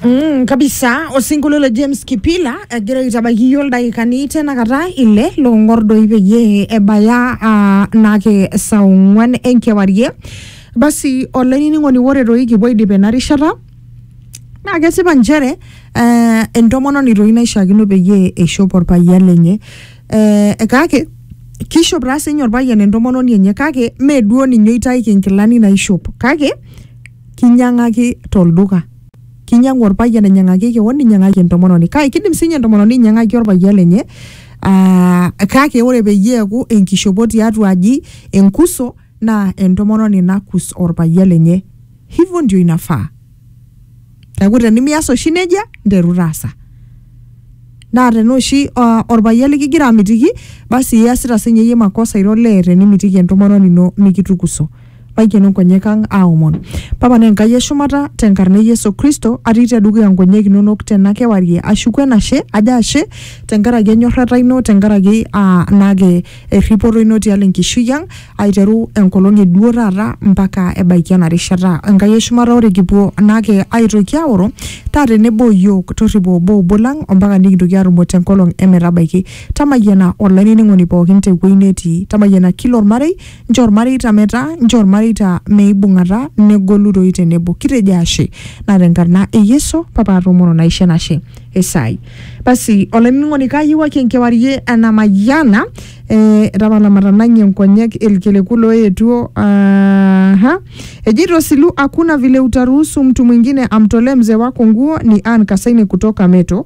Mm, kabisa osinkolio le James Kipila egira aitabaki iyie oldakikani tenakata ile loong'or doi peyie ebaya ah, naake saa ong'uan enkewarie basi olainining'oni ore doi kipuo aidip ena rishata naa kesipa nchere eh, entomononi doi naishiakino peyie eishop orpayian lenye eh, kake kishop taa sinye orpayian entomononi enye kake mee duo ninye oitaiki inkilani naishop kake Kinyiang'aki tolduka. Kinyiang'u orpayian ainyiang'aki kewon ninyiang'aki entomononi kake kidim siinye entomononi ainyiang'aki orpayian lenye aa kake ore peyie eeku enkishopo tiatua aji enkuso naa entomononi nakus orpayian lenye hivyo ndio inafaa. Neeku tenimias oshi neija nteru taasa. Naa tenaa oshi aa orpayian likigira amitiki basi iyasita siinye iyie makosa ira olee tenimitiki entomononi ino nikitukuso. Maikeno nkonyek ang aaomon. Papa naa Enkai e shumata, te nkarna e Yesu Kristo, atii te dukuya nkonyek inonok tena kewarie ashuku enashe, ajo ashe te nkaraki enyorrata ino, te nkaraki aa naake erripoto ino tialo enkishui ang, aiteru enkolong e duo taata mpaka ebaiki ena rishata. Enkai e shumata ore kipuo naake aitoki aoro, taa tenebo o iyiook, torripo obo obo lang o mpaka nikintoki aatumo te nkolong e metabaiki. Tamayiana olainining'oni pookin te wueji netii, tamayiana kila olmarei, Nchoo ilmareita metaa, nchoo ilmareita meibung'ata negolu doi tenebo. Kitejo ashe. Naa tenkarna e Yesu papa atoomono naisho enashe esai. Basi olainining'oni kaayiewuaki enkewarie enamayiana eh, tapala matanang'ie nkonyek ilkiliku looetuo aaha. Ejeito Silu hakuna vile utaruhusu mtu mwingine amtolee mzee wako nguo ni Ann Kasaine kutoka Meto.